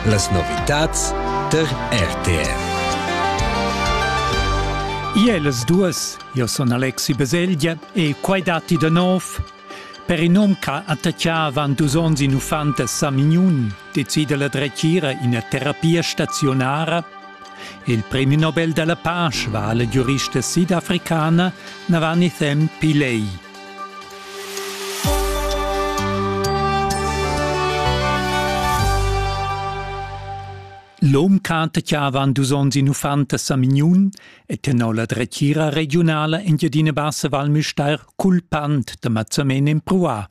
Las novitads tar RTR. Iel las duas, io son Alexi Beselgia e quai datti da nov. Per in um che attacchà avant dus onns in uffant a Samignun decide la dretgira ina terapia staziunara. Il premi Nobel della Pace va alla giurista sidafricana Navani Them Pillay. L'hom canta chiavan dus ons in uffant a Samignun e tenor la dretgira regionala in Giadina Bassa Val Müstair culpant da mazzamen empruà.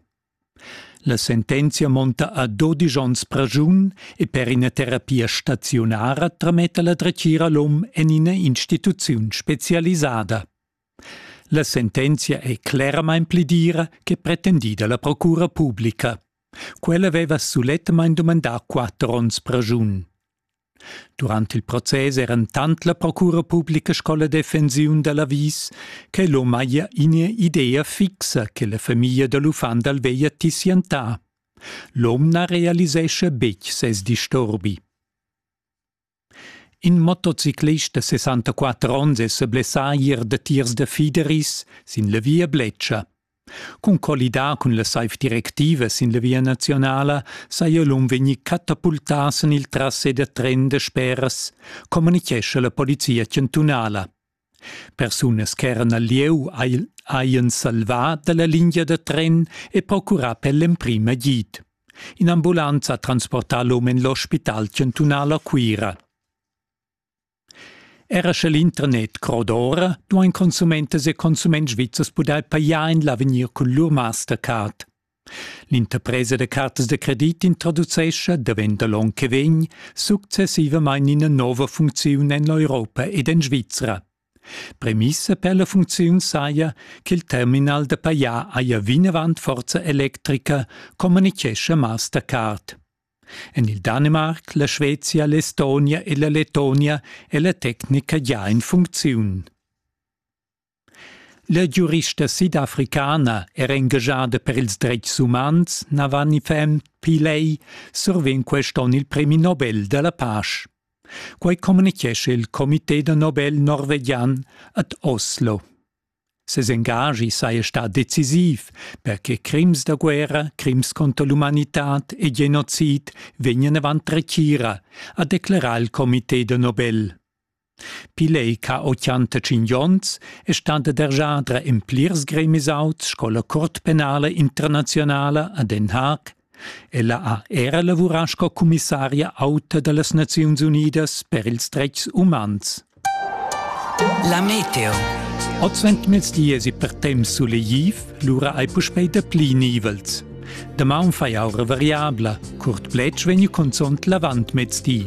La sentenzia monta a 12 ons pragiun e per ina terapia staziunara trametta la dretgira l'hom en ina instituziun specialisada. La sentenzia ei cleramain pli dira che pretendida la procura publica. Quella veva sulettamain dumandà quatter onns pragiun. Durant il process eran tant la procura publica sco la defensiun da l'avis che l'hom haja ina idea fixa che la famiglia da l'uffant dal veglia tissientà. L'hom na realisescha betg ses disturbi. In motociclist da sessantaquatter onns è sa blessà ier da tiers da fideris sin la via Bletscha. Cun collidar cun la saiv directiva sin la via nazionala saja l'um vegnì catapultà sin il trasse da tren da speras, communitgescha la polizia chantunala. Persunas ch'eran al lieu hajan salvà da la lingia da tren e procurà per l'emprim agid. In'ambulanza ha transportà l'um en l'ospital chantunal a Cuira. Era sche l'intranet croda ora, duain consumentas e consuments svizzers pudair pajar en l'avegnir cun lur Mastercard. L'interpresa da cartas da credit introducescha, daventa l'onn che vegn, successivamain ina nova funcziun en l'Europa ed en Svizra. Premissa per la funcziun saja ch'il terminal da pajar haja vinavant forza electrica, communitgescha Mastercard. En il Danimarc, la Scvezia, l'Estonia e la Letonia è la tecnica già in funcziun. La giurista sidafricana era engaschada per ils dretgs umans, na va ni fem pli lei, survegn quest onn il premi Nobel da la pasch. Quai communichescha il Comité da Nobel norvegian ad Oslo. Ses engagi saja stà decisiv, perche crims da guerra, crims contro l'umanitad e genocid vegnan avant retira, ha declerà il Comité da Nobel. Pil ei ca otschantatsching onns è stanta derjadra en plirs gremis auts sco la Cort penala internazionala a Den Haag. Ella ha era lavurà sco commissaria auta dallas Naziuns Unidas per ils dretgs umans. La meteo. Oz ventmils dies e per temps sulegiv, lura hai puspei da pli nivels. Damaun fai aura variabla, curt pletg vegn consont l'avant mezdi.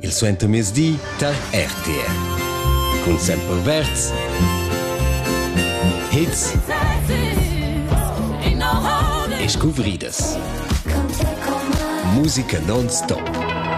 il suentermezdi tar RTR. Cun Semper Verz. Hits e scuvridas. Musica non-stop.